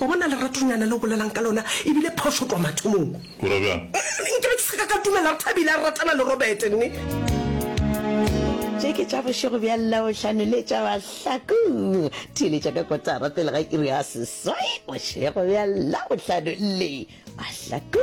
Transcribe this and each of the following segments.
Wa bona leratonyana le o bolelang ka lona e bile phošo kwa mathomong. O ra bjang? Nke be ke se ka ka dumela gore Thabile a ratana le Robert, nne? Tše ke tša bošego bja Labohlano le tša mahlaku. Theeletša ka kotara pele ga iri ya seswai bošego bja Labohlano le mahlaku.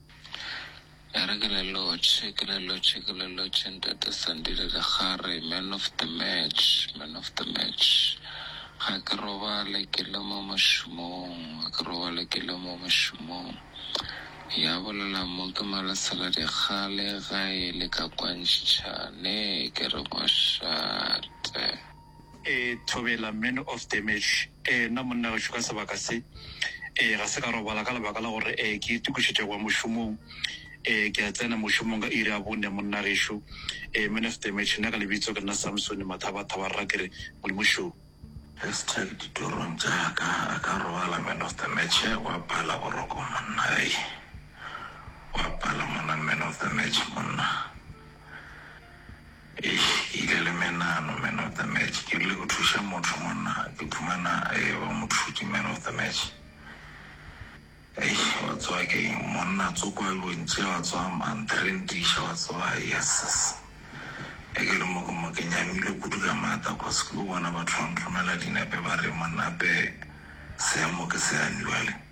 E re ke le lotšhe, ke le lotšhe, ke le lotšhe Ntate Sandile Lekgare, Man of the Match, Man of the Match. Ga ke robale ke le mo mošomong, ga ke robale ke le mo mošomong. Ya bolela mo ke Malesela Dikgale ga e le ka kwantšhitšhane ke re mošate. Ee, Thobela, Man of Damage. Ee, nna monna gašo ka sebaka se. Ee, ga se ka robala ka lebaka la gore ee, ke itokišetša go ya mošomong. Ee, ke a tsena mošomong ka iri ya bone, monna gešo. Ee, Man of Damage, nna ka lebitso ke nna Samsone Mathaba-thaba rra ke re, Modimo šoo. Hashtag Ditorong tša ka a ka robala Man of Damage, wa pala boroko monna hei. Wa pala monna Man of Damage monna. Eish ke ile le menano man of the match ke rile ke thuše motho monna ke phumana e ba mothuki man of the match eish wa tsoa ke eng monna tsoko a lo ntše wa tsoa man trendisha wa tsoa yeses e ke le mo ke mo ke nyamile kudu ka mata cause ke lo bona batho ba mphomela dinepe ba re monna ape seemo ke se amiwale.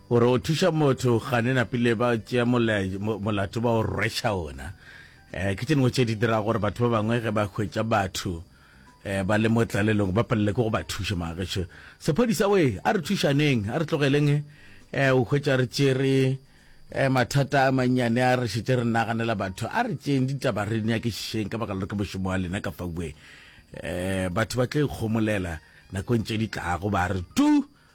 Gore o thuša motho gane napile ba tšea molato ba o rwetša ona. Ke tše dingwe tše di dirago gore batho ba bangwe ge ba hwetša batho ba le mo tlalelong ba palelwe ke go ba thuša. Mara gešo sephodisa we, a re thušaneng, a re tlogeleng o hwetša re tšere mathata a mannyane a re šetše re naganela batho. A re tšeeng ditaba re nyakišišeng ka baka la gore ke mošomo wa lena ka fa we. Batho ba tla ikgomolela nakong tše di tlago ba re tu.